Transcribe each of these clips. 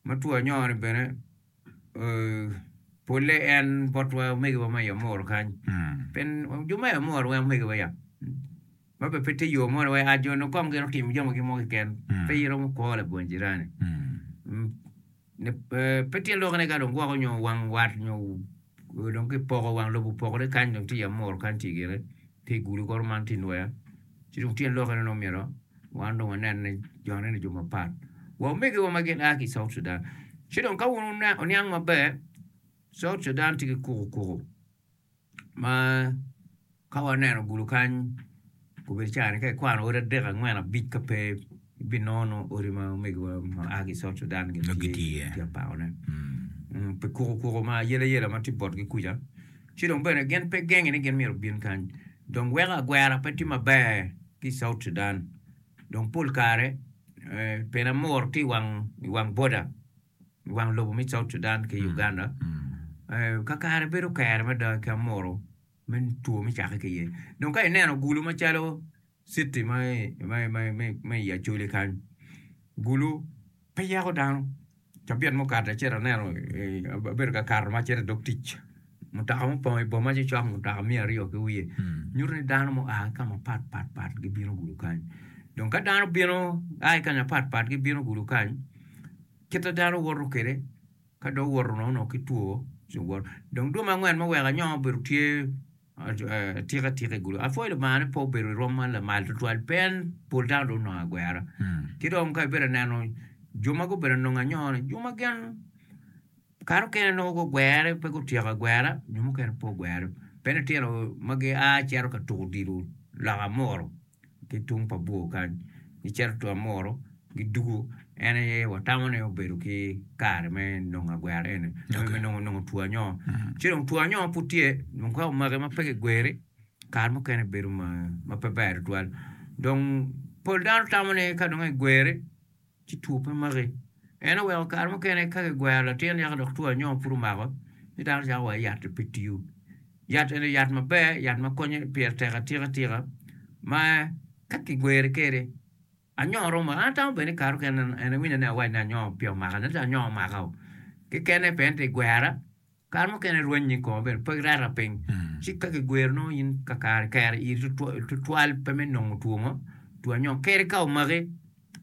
Ma two anyongo-ni bene polle en botwa omegiwa ma i Amuru kany. Pen jo ma i Amuru weng omegiwa ya. Ma bene pe tye yo mo ni wai a jo-ni okom gin otimo jamigi mo keken. Pe iromo kwo labongo jirani. Mm, ne- eh, Pe tye lokone ka dong gwoko nyo wang wat nyo dong kipoko wang lobo opokore kany dong tye i Amuru kany tye gire. Pi gudo kor man tye nwer, ci dong tyen lokke nongo myero wan dong wanenne jone ni jo mapat. Wa omegiwa ma gin a ki i South Sudan, ci dong ka wun wuniang maber, South Sudan tye ki kuku kuku ma ka waneno gudo kany obedo caa ni ka ikwano odi adek, angwen, abic ka pe ibinongo nongo odi ma omegiwa ma a ki i South Sudan gitye iye pi apakone. Pi kuku kuku ma ayelayela ma tye botgi kuca. Ci dong bene gin pe gengi ni gin myero gubin kany dong weko agwera pe tye maber ki i South Sudan. Dong pol kare pien amor ki i wang boda, i wang lobo me South Sudan ki Uganda, kakare bedo kero mada ki amoro me two me cakke ki iye. Dong ka ineno gulu macalo Citi me i Acholi kany, Gulu pe yako dano. Cabit mukadde acito aneno, abedo ka kato ma acito i dog tic, mutoka mupongo i boma cocok, mutoka miya aryo ki wiye. Nyuto ni dano mua ki ka mapat pat pat gibino Gulu kany. Dong ka dano bino a ki kanya mapat pat gibino Gulu kany, kit ma dano woto kwede, ka dong owoto nono ki two ci woto. Dong dwe me angwen me weko anyongo obedo tye Tika tika igulu? Apwoyo Lubanga ni pe obedo i rwom man lamal tutwal pien pol dano dong onongo agwera. Ki dong ka ibedo neno jo ma gubedo anongo anyona, jo ma gin kato kene nongo gugwere pe gutyeko agwera, jo mukene pe ogwere. Pe nitino ma gia cito ka tuko odilo loka muru. ki tung pa bwor kany gicito tung amuru gidwogo en aye watamo ni obedo ki kare me nongo agwero eni nongo me nongo two anyo ci dong two anyo pud tye dong ka omaki ma pe kigweri kare mukene bedo ma pe ber tutwal dong pol dano tamo ni ka dong egweri ci two pe maki. En oweko kare mukene ka kigwero latin yaka dok two anyom pud omako ci dano cako wa yat-ti pe tiyo. Yat eni yat maber yat ma konyo pire tek atika atika ma ka kigweri kede anyom romo maki. An atamo bene ni kare mukene en iwinyo ni awac ni anyom peya omaka ento anyom omaka o kekene pien ti igwera Kare mukene rwenyi ko obedo pe reta piny, ci ka kigwiro nongo in kakare kero iri tutwal pe me nongo twongo two anyong keri ka omaki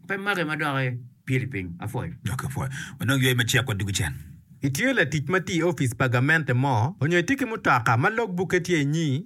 pe maki ma dok ipyeli piny. Apwoyo. Ok, apwoyo. Wanongo yweyo macek wa dwogo cen. Itye latic ma tiyo i opic pa gamente mo, onyo itye ki mutoka ma log bukke tye inyi?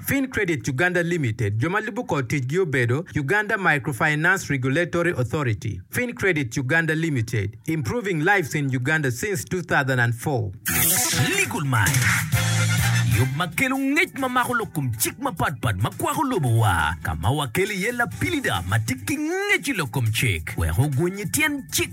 Fin Credit Uganda Limited, jo ma lubo kor ticgi obedo, Uganda Microfinance Regulatory Authority, Fin Credit Uganda Limited, improving lives in Uganda since 2004. Legal Mind, Yub ma kelo ngec ma mako lok kom cik mapat pat ma kwako lobowa, ka ma wakelo iye lapilida ma tye ki ngec i lok kom cik wek oguny i tyen cik.